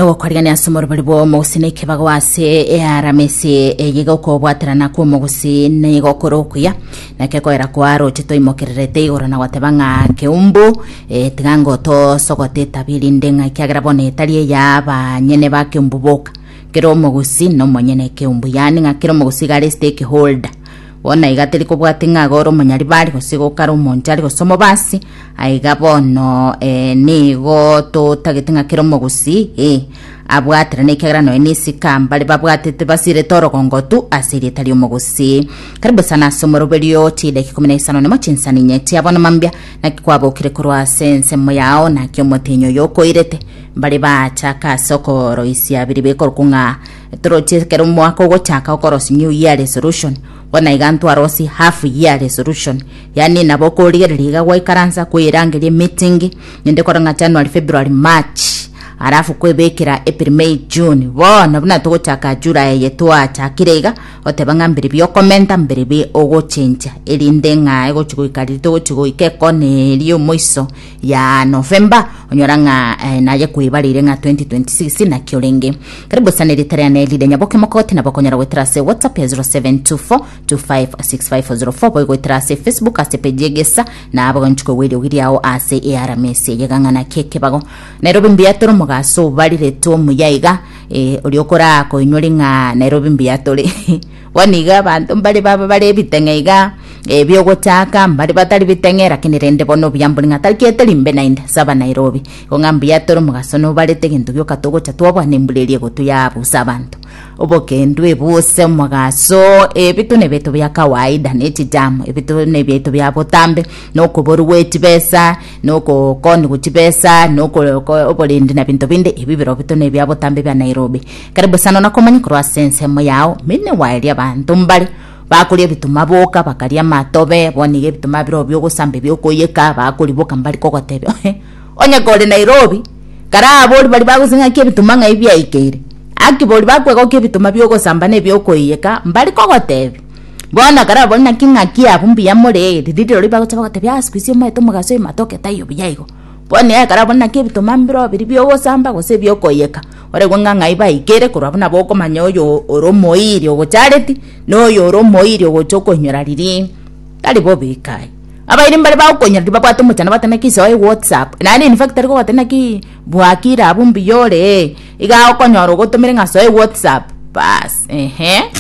nogokorigania ase omorobori bw'omogusi na ekebago ase earamesi eye gokobwaterana kw'omogusi nigo okore okuya naki ekoera kwa roche toimokererete igoro na goteba ng'a keumbu eh, tiga ngo tosogote etabi erinde ng'a ekiagera bono etari eya banyene ba keumbu boka kera omogusi nomonyene keumbu yaani ng'a kera omogusi iga aresete ekeholder Bono aiga teri kobwati ng'a agore omonyaribari gose iga okare omonchari gose omobasi, aiga bono eh, nigo totagete ng'a kera omogusii, eh, abwaterane ekiagera nonya na esika mbare babwatete basirete orogongotu ase erieta ri'omogusii. Karibu sana ase omoroberio chidaki ikomi na isano nemo chinsani inye chia bono mambia naki kwabokire korwa ase ensemo yao naki omotenyi oyo okoirete mbare baachaka ase okoroisia biri bekorokwa ng'a Toroche ekero omwaka ogochaka okorosia new year resolution bono iga ntwarosie half year resolution yaani nabo okorigereria iga gwaikaransa kweirangeria emeeting inde kore ng'a January February March alafu kwebekera April May June bono buna togochaka July eye twachakire iga oteba ng'a mbiri bi okomenta mbiri bi ogochencha erinde ng'a egochi goika riria togochi goika ekona eria omoiso ya November onyora ng'a eh, naye kwebarire ng'a 2026 nakio renge karibu sana erita riane erire nyaboke mokoti nabo okonyora goetera ase whatsapp ya 0724256504 boigo goetera ase facebook ase page egesa na abagonchi kwewa eriogi riao ase earamesi eyegang'ana kekebago nairobi mbuya tore omogaso obariretwe omuya iga eh, oria okoraa koinyori ng'a nairobi mbuya tore Bono nigo abanto mbare baba bare ebiteng'e iga, ebi'ogochaaka, mbare batari biteng'e, lakini rende bono obuya mbore ng'a tarigerete rimbe naende, ase Abanairobi. Igo ng'a mbuya tore omogaso nobarete, egento gioka togocha twabwana embura eria egotuyaya abwo ase abanto. Obokendu ebu ase omogaso, ebi tore nebiaito bia kawaida, ne chijamo, ebi tore nebiaito bia botambe, na okoboru gwe chibesa, na ogokoniwa chibesa, na oko- oko- oborendi na binto binde, ebi birobio tore nebia botambe bia Nairobi. Kare bosano nakomanya korwa ase ensemo yao, mine waeria abanto mbare bakoria ebituma boka, bakaria amatobe, bono iga ebituma birobio bi'ogosamba ebi'okoiyeka bakoriboka mbare kogotebia, Ohe, onye kore Nairobi! Kare abori baria bagosesenia ng'aki ebituma ng'ai biaikeire, aki bori bakwegokia ebituma bi'ogosamba na ebi'okoiyeka mbare kogotebia. Bono kare abori naki ng'aki abwo mbuya more, riria rirorio bagocha bagotebia, Ah sikuisi omaete omogaso oyo matoke taiyo buya igo. Bono iga ekero abori naki ebituma mbirobiri bi'ogosamba gose ebi'okoiyeka, Oregwe ng'a ng'ai baikire, korwa buna bokomanya oyo ore omoiri ogochareti, na oyo ore omoiri ogocha okoinyora riria tari bobe ikaye. Abairi mbare bagokoinyora riria babwate omochando bate naki isoa e WhatsApp, naende in fact tari kogoteba naki bua kira abwo mbuya ore, iga okonyora ogotomire ng'a soa e WhatsApp, baas ehe.